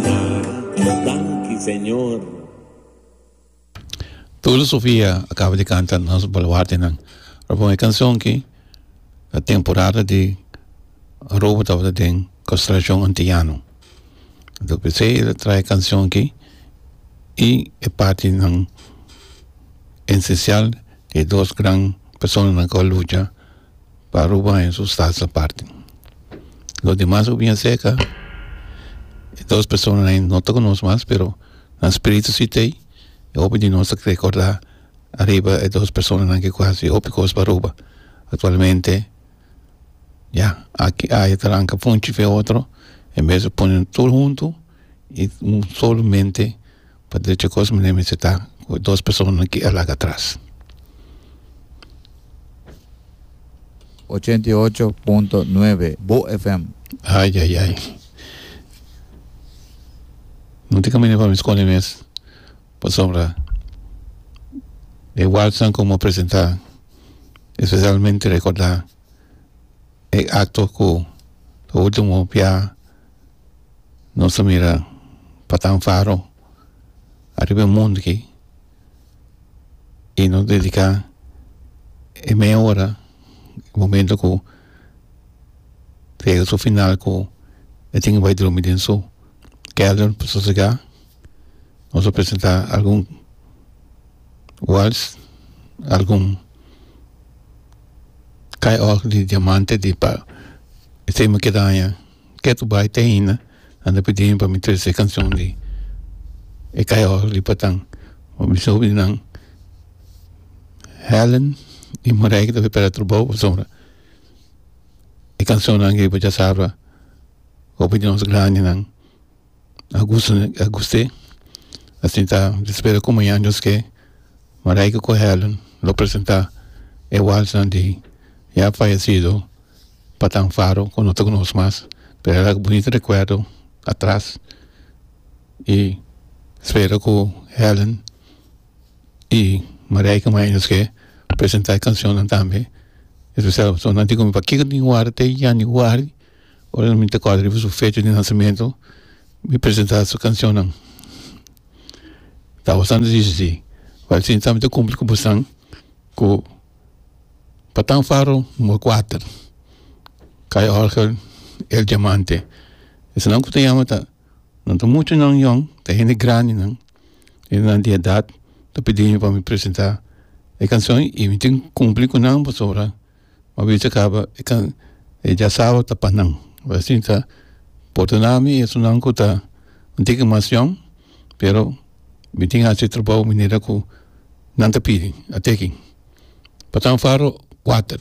Danki Señor. Tulio Sofia a caba di canta nos baluartenan. Robon e cancion ki na temporada di robo tabata den Constelacion Antillano. Anto p'esei el a trae e cancion ki y e partinan esencial di e dos gran personanan cu a lucha Pa Aruba hay un sustancia aparte lo demas lo bia cerca e dos persona hay no ta conoce mas pero nan spirito si tey y hopi di nos ta recorda ariba e dos personanan cu hasi hopi cos pa Aruba actualmente ya aki hay tranca funchi fe otro en bes lo pone tur hunto y un solo mente. pa derecho a kos manera mi ta seta ku dos personanan ki a laga atras. Ochenta i ocho punto nuebe Bo FM. Ai ai ai no tin kaminda pa mi skoli mes pasobra e walsnan ku mi a presenta espesialmente rekorda e akto ku ultimo bia. nos ta mira patan faro ariba e mundo aki y nos dedica e media ora momento cu ta yega su final cu e tin bai drumi den su kelder pa sosega nos ta presenta algun wals algun kai òrgel di diamante di pa e tema ke daña. Ketu bai te ainda anda pidiemi pa mi trece e cancion di e cayor di Patan pa mi sobrinan Helen y Morey que ta bay pera trabou pasobra e cancionnan aki pacha sabra hopi di nos grandinan a gusto a guste asinta spera cu mañan Dios ke Morey cu Helen lo presenta e walsnan di ya fayecido pa tan faro cu no ta cu nos mas pero era bunito recuerdo atras y spero cu Helen y Marijke maya nos ke presenta e cancionnan tambe especial pasobra nan tin pa kiko tin wari te januari ora mi ta kor riba su fecha di nasamento mi presenta su cancionnan ta bastante dificil pero mi ta cumpli cu bosan cu Patan Faro numero kuater kaya Orgel el diamante esnan ku ta yama ta nan ta muchu nan yon ta hende grandinan hende nan di edat ta pidinan pa mi presenta e kanshon y mi tin kumpli ku nan pasobra mi a bisa kaba e kan e diasabra ta pa nan asinsa por tona mi esunnan ku ta un tiki mas yon pero. Mi tin haci e trabou manera cu nan ta pidi. Ate aki. Patan Faro, kuater.